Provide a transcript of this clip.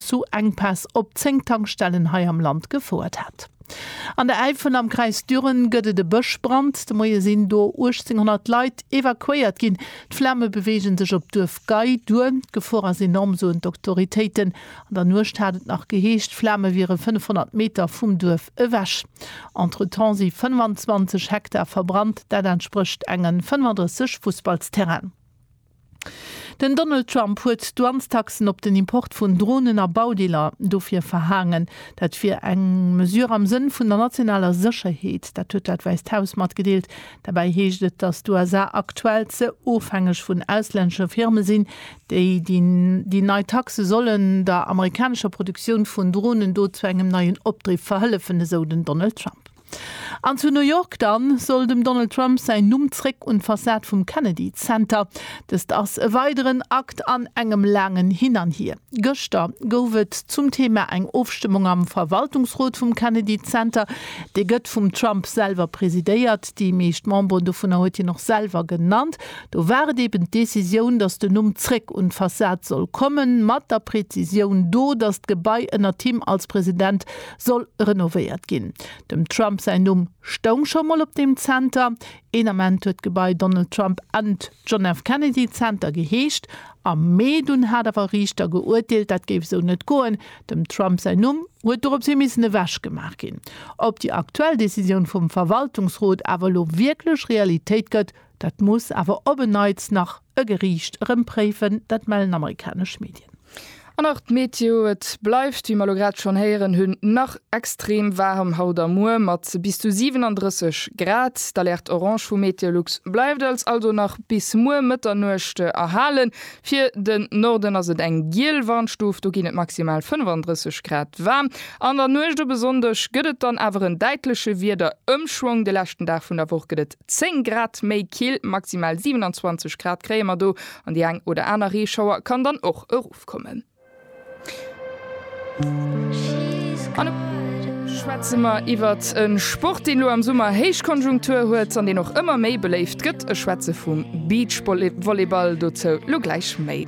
zu Enkpäss op 10 Tankstellen hei am Land gefouert hat. An der Äifel am Kreis Düren gëtt et e Bëschbrand. De Moie sinn do 1.800 Leit evakuéiert ginn. D'Flame beweege sech op d'Duerf Gay duer. D'Gefor ass enorm, soen d'Autoritéiten. An der Nuecht hat et nach geheescht, d'Flame wiere 500 Meter vum Duerf ewech. Entretemps si 25 Hektar verbrannt, dat entsprécht engen 35 Fussballsterrainen. Den Donald Trump huet d'Douanestaxen op den Import vun Dronen a Baudeeler dofir verhaangen. Dat wier eng Mesure am Sënn vun der nationaler Sécherheet. Dat huet dat Wäisst Haus matgedeelt. Derbäi heescht et, datt d'USA aktuell ze ofhängeg vun auslännesche Firme sinn, déi déi nei Taxe sollen der amerikanescher Produktioun vun Dronen do zu engem neien Opdriff verhëllefen, esou den Donald Trump. An zu New York dann, soll dem Donald Trump säin Numm zréck un d'Fassad vum Kennedy Center. Dëst ass e weideren Akt an engem laangen Hin an Hier. Gëschter gouf et zum Thema eng Ofstëmmung am Verwaltungsrot vum Kennedy Center. Dee gëtt vum Trump selwer presidéiert. Déi meescht Memberen dovunner huet hien och selwer genannt. Do war et eben d'Decisioun, datt den Numm zréck un d'Fassad soll kommen, mat der Prezisioun do, datt d'Gebai ënnert him als President soll renovéiert ginn. Dem Trump säin Numm stoung scho mol op deem Zenter. Een Ament huet d'Gebai Donald Trump and John F. Kennedy Center geheescht. Am Mee dunn hat awer e Riichter geurteelt, dat géif esou net goen. Dem Trump säin Numm huet doropshi missen ewech gemaach ginn. Ob déi aktuell Decisioun vum Verwaltungsrot awer elo wierklech Realitéit gëtt, Dat muss awer op en Neits nach e Geriicht erëm préifen, dat mellen amerikanesch Medien. An nach d'Meteo, Et bleift, wéi mer elo grad schonn héieren hunn, nach extrem waarem haut a muer mat bis zu 37 Grad. D'Alerte orange vu Meteolux bleift als also nach bis muer Mëtternuecht erhalen. Fir den Norden ass et eng giel Warnstuf, do ginn et maximal 35 Grad waarm. An der Nuecht op e Sonndeg gëtt et dann awer en däitleche Wiederëmschwong, de leschten Dag vun der Woch gëtt et 10 Grad méi kill, maximal 27 Grad kréie mer do an déi eng oder aner Reeschauer kann dann och erofkommen. An elo schwätze mer iwwert e Sport, deen elo am Summer Héichkonjunktur huet an deen och ëmmer méi beléift gëtt. Ech schwätze vum Beachvolleyball. Dozou elo gläich méi.